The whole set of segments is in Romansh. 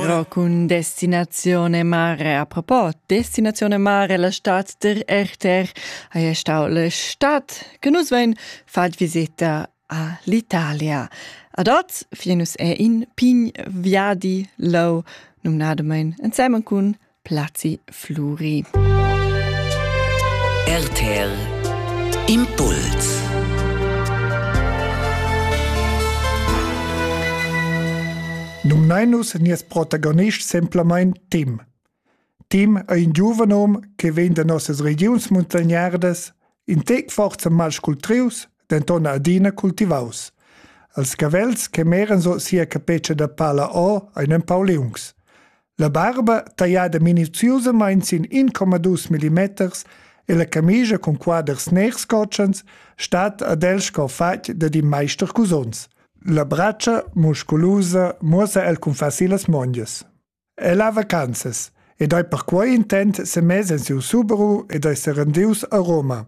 Ro cun destinazione mare. A propos, destinazione mare, la stad der Erter, haja stau la stad che nus vein fat visita a l'Italia. Ad oz, finus è in pign viadi lau, numnadamein ensemen cun Plazi Fluri. RTL Impuls Numnainus nies protagonist semplamein Tim. Tim è in giuven hom che vegn da nossas regiuns muntagnardas, in tec forza malscultrius, denton adina cultivaus. Als cavels che meran so sia capeccia da pala o ein empau liungs. La barba, tagliada minuziusamain sin 1,2 millimeters, e la camigia cun quaders ners cotschens stat ad el sco fatg dad in maister cusons. La bratscha, musculusa, muossa el cun facil las mondias. El ha vacanzas ed ei per quei intent semess en siu Subaru ed ei serendius a Roma.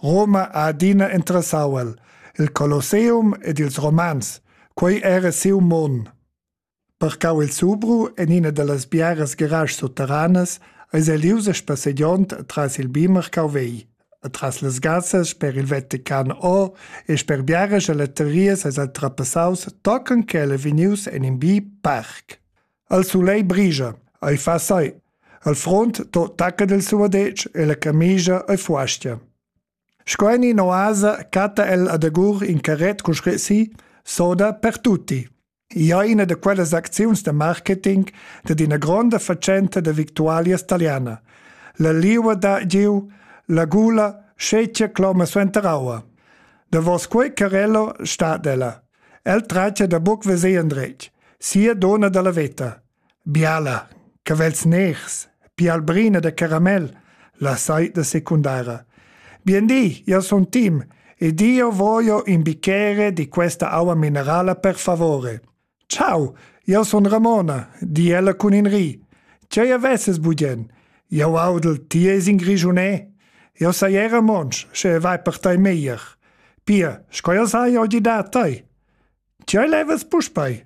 Roma ha adina interessau el, il Colosseum ed ils Romans, quei era siu mon. Parcau il Zubru en ina dallas biaras garaschs sutteranas eis el ius a spassegiond atras il bi marcau vegl, atras las gassas sper il Vatican O e sper biaras galeterias eis el trapassaus tochen ch'el ei vegnius en in bi parc. El sulei brigia, ei fa sai. Al frunt to tacca del suadetsch e la camigia ei fuastia. Sco en in oasa catta el adagur in carret cun scrit si soda per tutti. ia ina da quellas acziuns da marketing dad ina gronda fatschenta da victualias taliana. La liua da giu, la gula, scetgia cloma suenter aua. Davos quei carello sta ella. El traccia da buc veser endretg, sia dona dalla veta. Biala, cavels ners, pialbrina da caramel, la saita secundara. Bien di, io sun Tim ed io voglio in bicchiere di questa aua minerala per favore. Ciao, io sun Ramona, di ella cun in ri. Ce avesses bugen? Io audel, ti es in grigiunè. Io sei era monsch, sche vai per tai meglier. Pia, sco io sai oggi da tai? Ce levas puspei?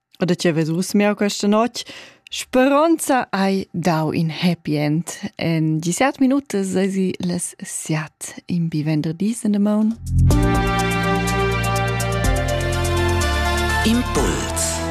O da ti vees uss miau questa notg. Speronza hai dau in happy end. En dissert minutas eisi las siat in bi venderdis in the moon. Impuls